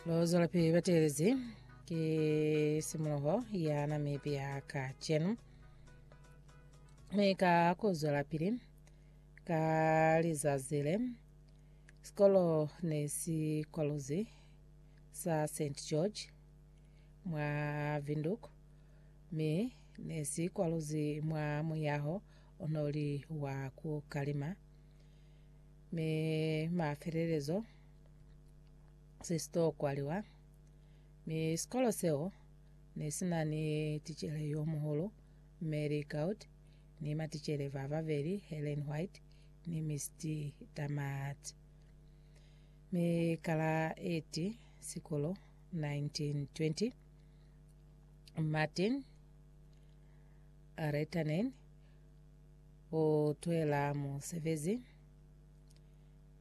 Lozola pili batelezi ke simoloho ya namepe ya ka chenu. Me ka kuzola pili ka lizazile sikolo ne si kwaluzi sa St George mwa Vinduk me ne si kwaluzi mwa muyaho onoli wa ku kalima Mi mafelelezo, se si to kwaliwa. Mi sikolo seo ne si na ni ticele yo muhulu, Mme Lee Gaud, ni maticele ba babeli, Helen White ni Misty Damart. Mi ka la 8 Sikulo 1920, Martin Reitanen Ku twela musebezi,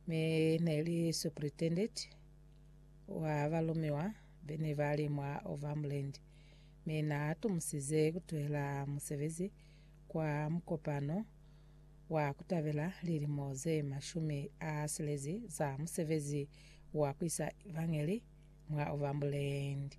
mi ne li superintendent wa balumiwa bene ba li mwa Overmland, mi na tumusize ku twela musebezi kwa mukopano wa ku tabela lilimo ze mashumi a silezi za musebezi wa ku isa evangeli mwa Overmboland.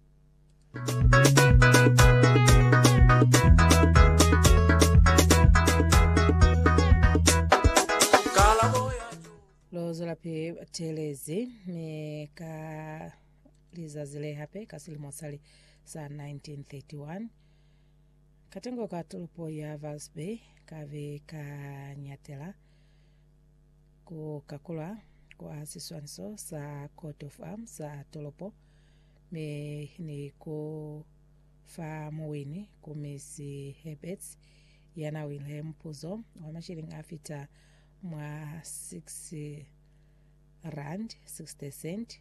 Lozwela pili batelezi mi ka lizazi le hape ka silimo sali sa 1931 katengo ka tolopo ya Valsby ka be ka nyatela Ku kakulwa kwa siswaniso sa coat of arm sa tolopo mi ni ku fa muwini ku Miss Herberts ya na wile mupuzo wa mashilingi a fita mwa 6 rand 60 cent